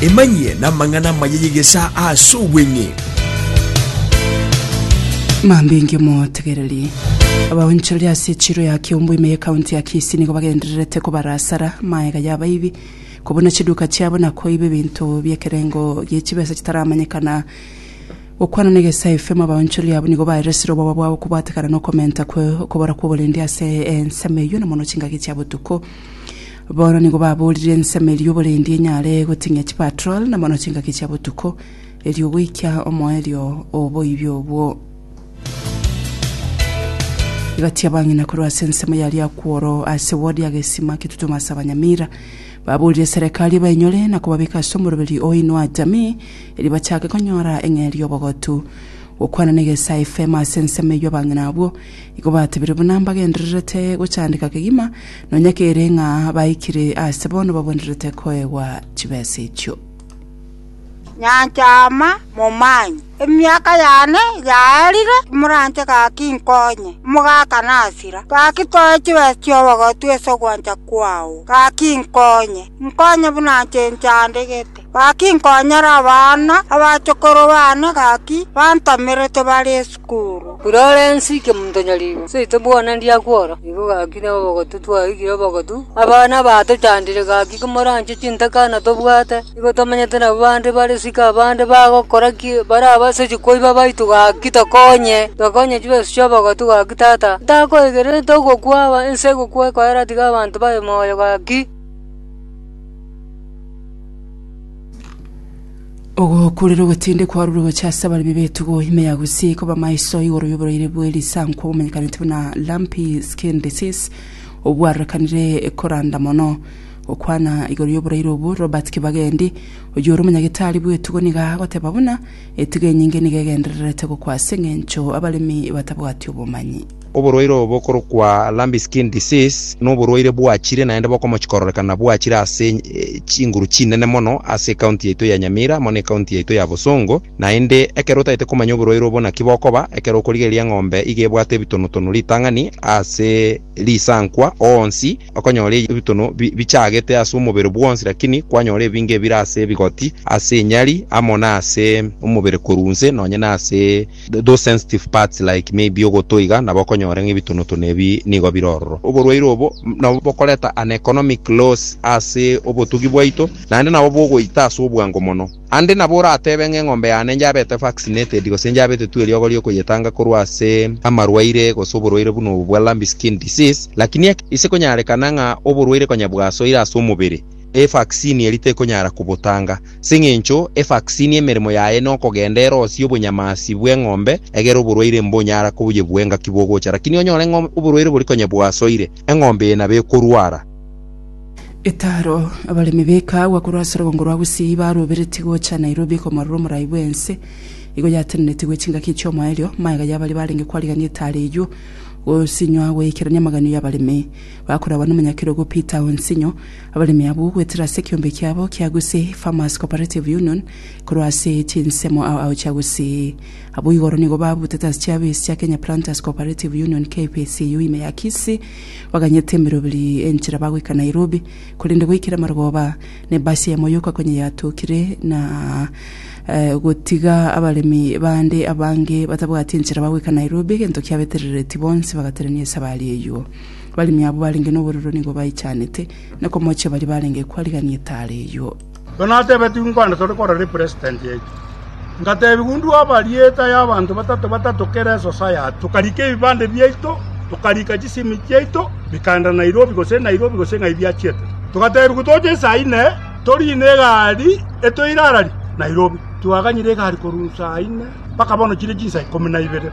Emanyie namang'ana amaya y'egesaa ase obweng'e. Mambinge motegereri. Abaonchoreri ase echiro ya Kiombo ime y'ekaunti ya Kisii nigo bagendererete kobarasara maega y'abaibi, kobuna chiduka chiabo na koiba ebinto bi'ekerengo gie chibesa chitaramanyekana. Gokwana na egesaa FM abaonchoreri abwo nigo baeresire oboba bwabo kobwatekana na okomenta kwe okobora kw'oborendi ase ensemo eyio na mono chingaki chia botuko. Bono nigo baboorire ensemo eria oborendi enyare goting'ia chipatrol na mono chingaki chia botuko, erio goikia omoerio o oboibi obwo. Egati y'abang'ina korwa ase ensemo ya Riakworo ase ward ya Gesima Kitutumo ase abanyamira baboorire serekari ebainyore na kobabeka ase omoroberi o Inua Jamii erio bachake konyora eng'eria y'obogotu. Gokwana na Egesae FM ase ensemo eyio abang'ina abwo Igo batebire buna mbagendererete gochandeka kegima, nonya kere ng'a baikire aase bono bagwenerete koegwa chibesa echio. Nyancha ama, momanye. Emiaka yane yaarire, timoranche gaki nkonye, omogaka nasira. Gaki toe chibesa chi'obogotu ase ogwancha kwao, gaki nkonye, nkonye buna inche nchandegete. Gaki nkonyora abana, abachokoro baane gaki bantamerete bare esukuru. Florence Kemutonyorigo, seito bwona ndiakwa oro, nigo gaki na obogotu twaigire obogotu. Abana batochandire gaki komoranche chintakana tobwate, nigo tomenyete nabo bande bare siko abande bagokora ki baraba ase chikoiba baito gaki tokonye, tokonye chibesu chi'obogotu gaki tata. Ntakoigererete ogokwa, ense egokwa ekoera tiga abanto babe moyo gaki. ogokurera ogotinde kwarure gocha ase abaremi b'etugo ime ya gusii koba maiso igoro y'oborwaire bw'erisankwa obomenyekanete buna lumpy skin disease obwarorekanire koranda mono okwana igoro y'oborwaire obwo robert kibagendi oyio ore omonyagitari bw'etugo niga agoteba buna etugo enyinge niga egendererete gokwa ase eng'encho abaremi batabwati obomanyi Oborwaire obo bokorokwa lumpy skin disease noborwaire bwachire naende bokomochi kororekana bwachire ase chinguru chinene mono ase ecounty yaito ya Nyamira mono ecounty yaito ya Bosongo naende ekero otagete komanya oborwaire obo naki bokoba ekero okorigereria eng'ombe iga ebwate ebitono tono ritang'ani ase risankwa onsi okonyora ebitono bichagete ase omobere bwonsi lakini kwanyora ebinge ebire ase ebigoti ase enyari amo nase omobere korwa inse nonye nase those sensitive parts like maybe ogoto iga, nabo okonyora ng'a ebitonotono ebi nigo bire ororo. Oborwaire obo nabo bokoreta an economic loss ase obotugi bwaito, naende nabo bogoita ase obwango mono. Ande nabo oratebe ng'a eng'ombe yane njabete vaccinated gose njabetetwe eriogo riokoyetanga korwa ase amarwaire gose oborwaire buna obo bwa lumpy skin disease, lakini eke ise konyarekana ng'a oborwaire konya bwasoire ase omobere, evaccine eria tekonyara kobotanga. Sing'encho evaksini emeremo yaye nokogenda erosie obonyamasi bw'eng'ombe egere oborwaire mbonyara koyebua engaki bogocha. Lakini onyore ng'a oborwaire bori konya bwasoire, eng'ombe eye nabo ekorwara. Etaro, Abaremi b'ekaagwa korwa ase Orongongo rwa Gusii baroberetie gocha Nairobi komorora omorai bw'ense. Igo yatenenetigwe chingaki chi'omoerio, magega y'abaria barenge kwarigania etaro eyio, gosinywa goikerania amaganio y'abaremi bakoragwa n'omonyakerogo Peter Onsinyo, Abaremi abwo goetera ase ekeombe kiabo kia Gusii Farmers Cooperative Union korwa ase chinsemo ao ao chia Gusii. Abwo igoro nigo babutete ase chiabo esi chia Kenya Planters Cooperative Union, KPCU, ime ya Kisii, baganyete emeroberi enchera bagoika Nairobi, korende goikera Marogoba nebasi yamo yoka konya yatokire na gotiga abaremi bande abange batabwati enchera bagoika Nairobi egento kiabeterereti bonsi bagaterania esabari eyio. Abaremi abwo barenge noborero nigo baichanete, na komochia baria barenge kwarigania etaara eyio. Ekero natebetigwe nkwande tore korora epresitenti eria, ngatebigwa undue abarieta y'abanto batato batato kera esosayati, tokarika ebibande biaito, tokarika chisimi chiaito, bikaenda Nairobi gose Nairobi gose ng'ai biachiete. Togatebigwa toche saa ine, toriine egari etoirararie Nairobi. Twaganyire egari korwa saa ine mpaka bono chire chinsa ikomi na ibere.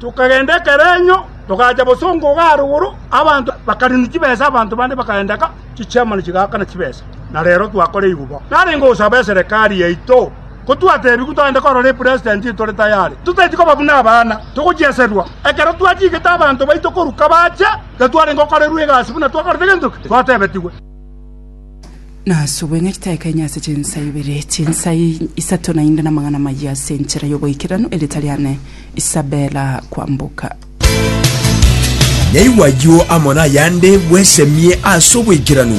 Tokagenda ekerenyo, togacha bosongo iga arigoro, abanto bakarina chibesa, abanto bande bakaendeka chichiamano chigaakana chibesa, na reero twakoreirwe bo. Narenge gosaba eserekari yaito, ko twatebigwe togende korora epresident etore tayare, totaeti koba buna abana, togochieserwa. Ekero twachigete abanto baito korwa kabache, gatwarenge gokorerwa egasi buna twakorete gento ki? Twatebetigwe. Nasubwe ng'a chitaikaine ase chinsa ibere, chinsa isato naende namang'ana amayia ase enchera y'oboikeranu, erieta riane Isabella Kwamboka. Naigwa ayio amo nayande bwesemie ase oboikeranu.